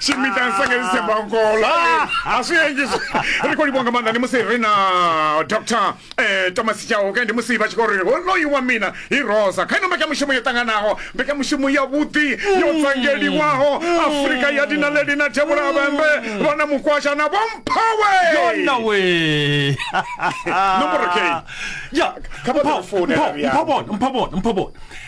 shimita nsake zithemba nkolo Ah, aswiyenji ri khou livhuwa nga maanḓa ndi musi ri na dr eh, thomas chauke ndi musi vha tshi khou ri honoyu wa mina i rosa kha ino mbekanyamushumo yo ṱanganaho mbekanyamushumo yavhuḓi yo tsangeliwaho afurika ya dina leli na thevhula vhembe vha na mukwasha na vhomphawe yona we Nomboro kei. ya Kha vha ḓi founela, Ria. mphabona mphabona mphabona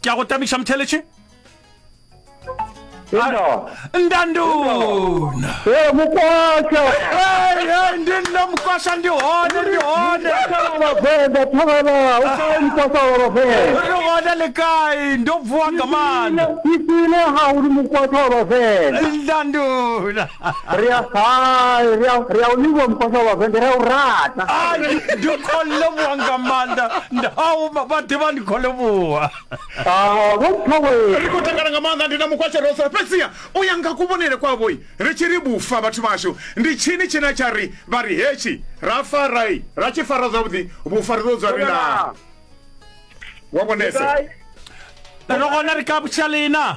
ke a go tamiša motheletše ndanduna eh, mukwasha eh, eh, ndi nna mukwasha ndi hone ndi hone ri hone le kai ndo bvuwa nga maanḓa ndanduna ri a hai ri a ri a livhuwa mukhosha wa vende ri a u rata Ah, ndi ndi khou livhuwa nga maanḓa ndau vha ḓivha ndi khou livhuwa Ah, vho mphawe ri khou takala nga maanḓa ndi na mukhwasha ro sala fhedziha u ya nga kuvhonele kwavhoi ri tshi ri vhufa vhathu vhashu ndi tshini tshine tsha ri vha ri hetshi ra farai ra tshi fara zwavhuḓi vhufa ri ḓo dzwa ri na wa vhonese Gai? ro gona ri ka butšhalena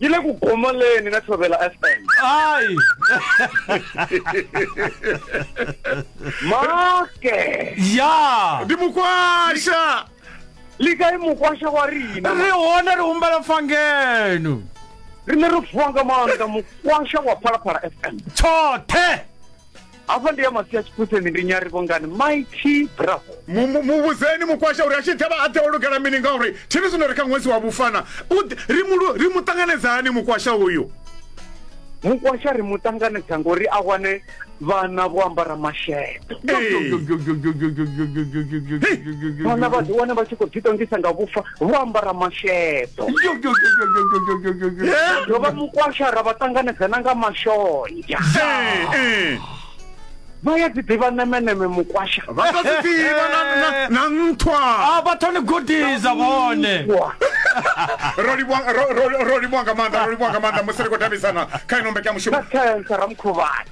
yi le ku gomoleni na tshovela fm hayi make ya ndi mukwasha lika i mukwasha wa rina ri hone ri humbela mfangenu ri ne ri vuwa nga maanḓa mukwasha wa phalaphala fm tshoṱhe hafha ndi ya masia tshiphuseni ndi nyari vhongani mighty bravo Mu- mu- muvhudzeni mukwasha uri a tshi ḓa vha a ḓe o lugela mini ngauri thini zwino ri kha ṅwedzi wa vhufana U ḓi- ri mu lu- ri mu ṱanganedza hani mukwasha uyu mukwasha ri mu ṱanganedza ngori a wane vhana vho ambara masheḓo Ee. vhana vha ḓi wana vha tshi khou ḓiṱongisa nga vhufa vho ambara masheḓo ro vha mukwasha ra vha ṱanganedzana nga mashonzha vha ya dzi ḓivha nemeneme mukwasha vha ḓo dzi ḓivha na nthwa a vha thoni gudisa vhone ro livhuwa nga maanḓa ro livhuwa nga maanḓa musi ri khou davhidzana kha ino mbekanyamushumo ra mukhuvhani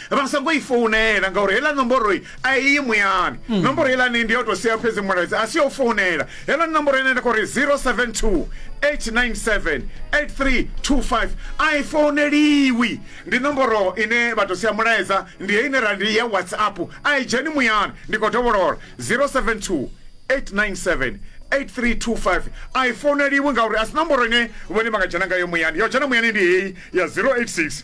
Vha songo i founela ngauri heiḽa nomboro a i yi muyani. Nomboro heiḽani ndi yo tou sia fhedzi mulaedza, a si ya u founela. Heiḽani nomboro ine nda khou ri 072 897 8325 a i founeliwi. Ndi nomboro ine vha tou sia mulaedza, ndi heyi ine ra ndi ya WhatsApp, a i dzheni muyani. Ndi khou dovholola 072 897 8325 a i founeliwi ngauri a si nomboro ine vhone vha nga dzhena ngayo muyani. Ya u dzhena muyani ndi heyi ya 086.